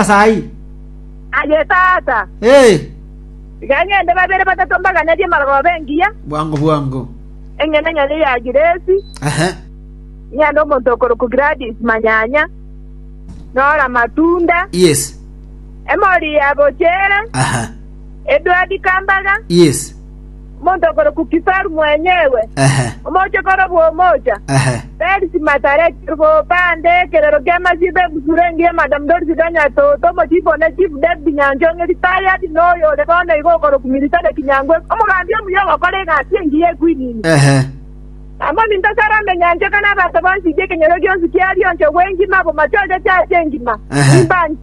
ase ayio. Aye tata, Ee, tiga ng'ende babere batato mbaganerie amarogoba engiya, bwango bwango. eng'ina enyanya ya Giresi, Ehe. ng'ende omonto okorokwa Gladys manyanya, nore amatunda, Yes. Emori ya Bochere, Aha. Edward Kambaga, Yes. omonto okorokwa Kisaru mwenyewe, Ehe, omochie okorokwa Omocha, ehe. Perisi Matareti, bande ekerero ki'amasibe ebusuro engiya Madam Dorisi Ganyatoto, omochifu one Chief David Nyanchong'e, retired, na oyo ore bono igo okorokwa Military Kinyangwe, omogambi omuya ogokora egati engiya e Kwinini. Ehe. Namominto Salome Nyanchoka na abanto bonsi b'ekenyoro gionsi ki'Arionchogwe engima, abo machocha chi'Aase engima, Ehe. nimbanche.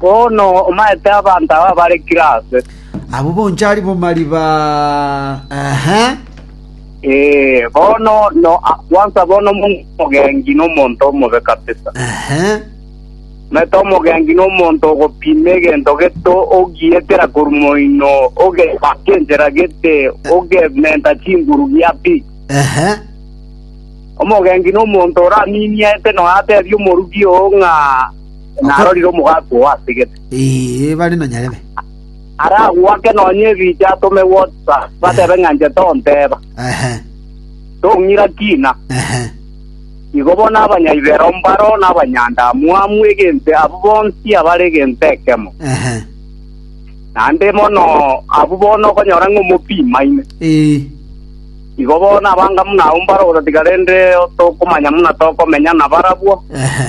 Bono omaete abanto aba bare kire aase. Abwo bonchari bo mariba, ehe. Ee, bono no akwansa bono omonto omogengi na omonto omobe kabisa. Ehe. Omaete omogengi na omonto ogopima egento gete ogietera korwa moino, ogebaka enchera gete, ogementa chinguru gia pi. Ehe. Omogengi na omonto oramimiete noyo atebie omorubi oo ng'a narorire omogaati oo ase egete. Ee, bare na nyarebe. Aragoake nonya ebiche atome WhatsApp, batebe ng'a inche tonteba. Ehe, Tong'ira kina. ehe. Igo bono abanyaibero mbaro na abanyandamwamu egento abwo bonsi abare egento ekemo. Ehe. Naende mono abwo bono okonyora ng'a omopima ime. Ee, Igo bono abanga buna abwo mbare ogotatiga rende tokomanya buna tokomenya nabarabwo. ehe.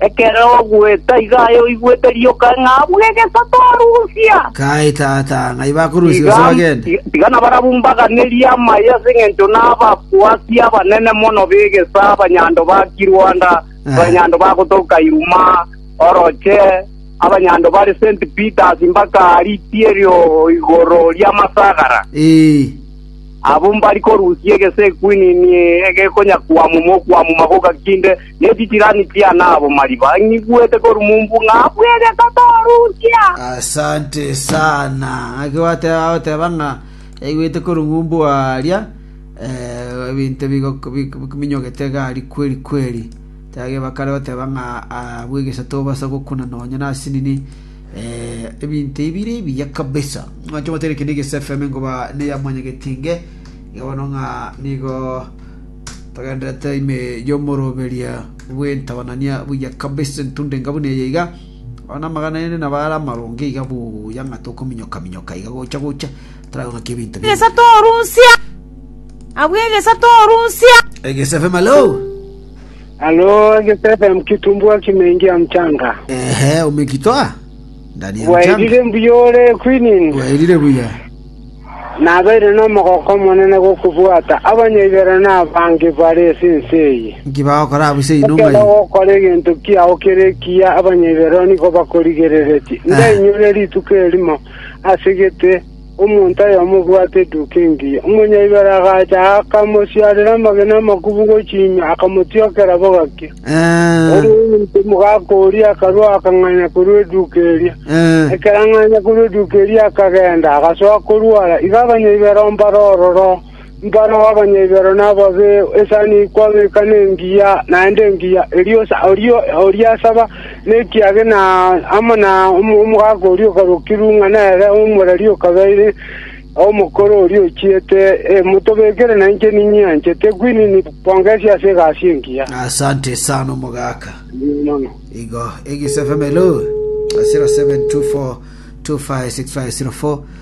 Ekero ogweta iga aye oigwete rioka ng'a abwo egesato arusia. Kai, Tata, ng'ai bakorusia gose bagende? Tiga nabarabwo mbaganerie amaye ase engencho nababwati abanene mono b'egesa, abanyando ba Kiruanda, abanyando bagotoka Iruma oroche, abanyando bare St. Peters mbaka Ritielyo igoro ri'amasagara. Ee, Abwo mbari korusia egesa ekwinini egekonyakwamwa mokwamwa magoka kinde, ne chisirani chiane abo mariba ng'igwete korumumbu ng'a bwegeka torusia. Asante sana. Ng'aki gwateba agoteba ng'a yaigwete korumumbu aria eh, ebinto bigok- bik- biminyogete iga aria kweri kweri. Tebage bakare goteba ng'a ah, bwegesa tobasa gokuna nonya nase nini eh, ebinto ebire ebiya kabisa. Ng'a chomotene kende Gesa FM ngoba neya mwanyagetinge iga bono ng'a nigo Togendererete ime y'omoroberia bw'entabanania buya kabisa, entunda enga buna eye iga, abana amagana ere nabo are amaronge iga buya ng'a tokominyoka-minyoka iga gocha-gocha, taragothokia ebinto bire. Egesato orusia. Abwo egesato orusia. Egese FM, hello. Halo, Egesato FM kitumbua kimeingia mchanga. Ehe, umekitoa. Bwaerire mbuya ore Quinine. Bwaerire buya. Nabeire nomogoko omonene gokobwata abanyaibero na abange bare ase ense eye. Inki bagokora abwo ise inwe Ekero ogokora egento kiao kere ekiya abanyaibero nigo bakorigereretie. Ndainyore rituko erimo ase gete Omonto oyomo obwate eduuka engiya, omonyaibera agacha, akamosiarera amagena amakubu gochia ime, akamotiokera bogaki. Ere omonto omogaka oria akarua akang'anya korwa eduuka eria. Ekero ang'anya korwa eduuka eria akagenda, agasoa korwara. Igo abanyaibera oo mbarororo. Mbano abanyaibero nababe, esani kwabeka nengiya, naende engiya erio oria oriasaba nekiagera amo na omogaka oria okarokirwe ng'a nere omoreri okabeire omokoro oria ochiete. Motobekere nainche ninyianchete kwinini kongesia ase egasi engiya. Asante sana omogaka. Igo egisfmlo 0724256504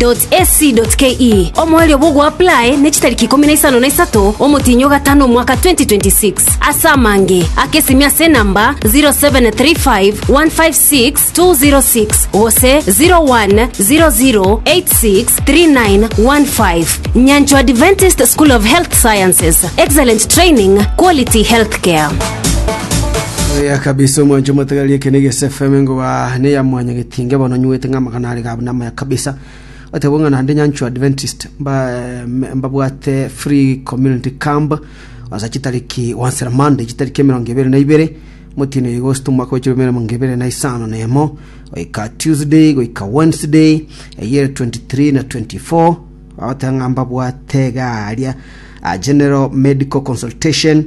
www.ac.ke omoerio bw'ogoapply ne chitariki ikomi na isano na isato omotienyi o gatano omwaka 2026 ase amange akesimia ase enamba 0735156206 gose 0100863915 nyanchwa adventist school of health sciences excellent training quality healthcare Oya kabisa omwancho matagali ekene gese FM ngoba ne ya mwanya getinge bono nywete ng'a magana are gabu na maya Kabisa. Oteba ng'a naende nyanchwa Adventist mba- me- mbabwate free community camp ase chitariki gwansera Monday chitariki emerongo ebere na ibere motino ya Agosto omwaka bwa chirumi emerongo ebere na isano na emo goika Tuesday goika Wednesday eyere 23 na 24 bagoteba ng'a mbabwate iga aria a general medical consultation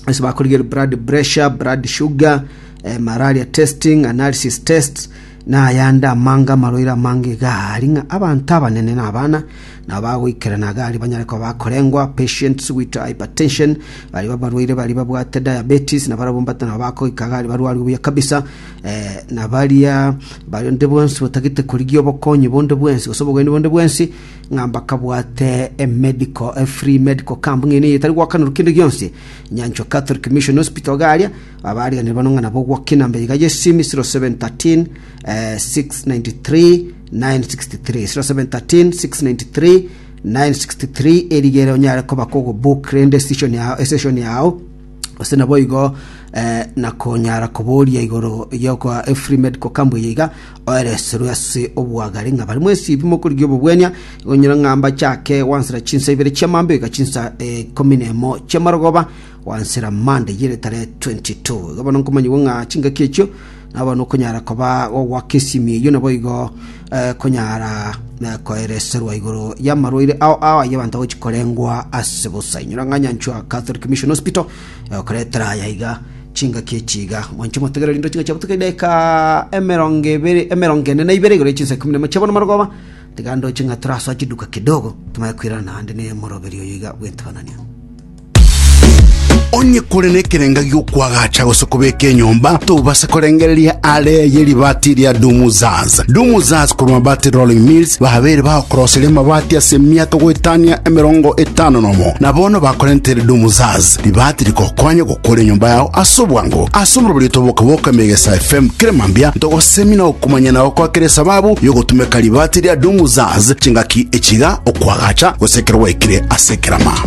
ase bakorigereria blood pressure blood sugar eh, malaria testing analysis tests Nayande amanga amarwaire amange iga aria ng'a abanto abanene na abana nabo bagoikerana iga aria banyare koba bakorengwa, patients with hypertension, baria abarwaire baria babwate diabetes, na barabwo mbato nabo bakoika iga aria barwarwe buya kabisa, eh, na baria baronde bonsi batagete korigia obokonyi bonde bwensi gose obogeni bonde bwensi, ng'a mbakabwate emedical, efree medical camp ng'a eyio nigo etari goakanerwa kende gionsi, nyanchwa Catholic Mission Hospital iga aria, Abaarigereria bano ng'a nabo ogwokina mbe iga Yesu ime 0713 eh, 693 963 0713 693 963 erigere onyare koba kogobook rende station yao estation yao ase nabo igo eh, nakonyara koboria igoro yokoa efree medical camp eye iga oereserwe ase obwagari ng'a bari mwesibi mokorigia obobwenia igonyora ng'a mbachake wansera chinsa ibere chiamambe iga chinsa eh, ikomi na emo chiamarogoba Gwansera Monday yere tarehe 22. Iga bono nkomanyigwa ng'a chingaki echio nabo nokonyara koba gogoaka esimi eyio naboigo eh, konyara eh, koereserwa igoro y'amarwaire ao ao ayio abanto agochi korengwa ase bosa inyora ng'a nyanchwa Catholic Mission Hospital eh, okoretera aya iga chingaki echi iga mwanche motegere rindo chingaki chiabutuka edaika emerongo ebere emerongo ene na ibere igoro ya chinsa ikumi na emo chiabono marogoba tiga ndoche ng'a torasoa chiduka kidogo tomanye koirana naende ne moroberio oyo iga bw'entebanania Onye kore nekerenga gi'okwagacha gose kobeka enyomba, tobase korengereria aare ye ribaati ria Dumuzaz. Dumuzaz korwa Mabati Rolling Mills babeire bagokoroseria amabati ase emiaka goetania emerongo etano nomo, na bono bakorentere Dumuzaz. Ribaati rigokonye gokora enyomba yao ase obwango. Ase oborobori otoboke-boke ime Egesa FM kera mambia, ntogosemia na gokumanyana goko ekero esababu y'ogotumeka ribaati ria Dumuzaz chingaki echiga, okwagacha, gose ekero gwaikire ase ekerama.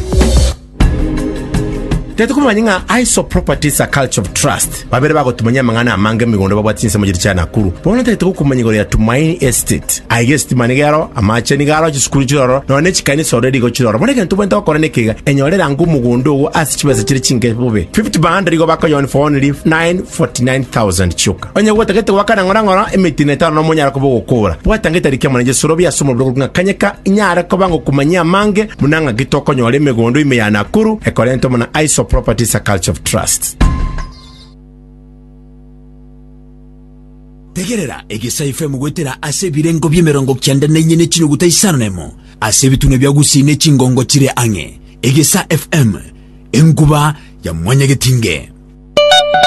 Tari komanya ng'a ISO Properties a Culture of Trust babere bagotumanyia amang'ana amange emigondo babwate chinsemo chiria chia Nakuru. Bono tari togokumanya igoro ya Tumaini Estate. Aiga esitima nigo ero, amache nigo aro, chisukuru chire ororo, nonya ne chikanisa ororo rigo chire ororo. Bono ekero tobwenerete gokora neke iga, enyore rango omogondo ogo ase chibesa chire chinke bobe. 50 by 100 igo bakoyoa only for only 949,000 chioka. Onye gwotagete goakana ng'orong'oro emetino etano na omonyara koba ogokora, bwata ng'ita rikia mwana Jesu Robi ase omorero korwa ng'akanyeka, inyare koba ngokumanyia amange buna ng'aki tokonyora emegondo ime ya Nakuru ekorentwamo na Aiso Properties a Culture of Trust. Tegerera egesaai FM goetera ase ebirengo bi'emerongo kianda na inye ne chinuguta isano na emo ase ebitunwa bia Gusii ne chingongo chire ang'e. Egesaa FM, enkuba ya mwanyagetinge.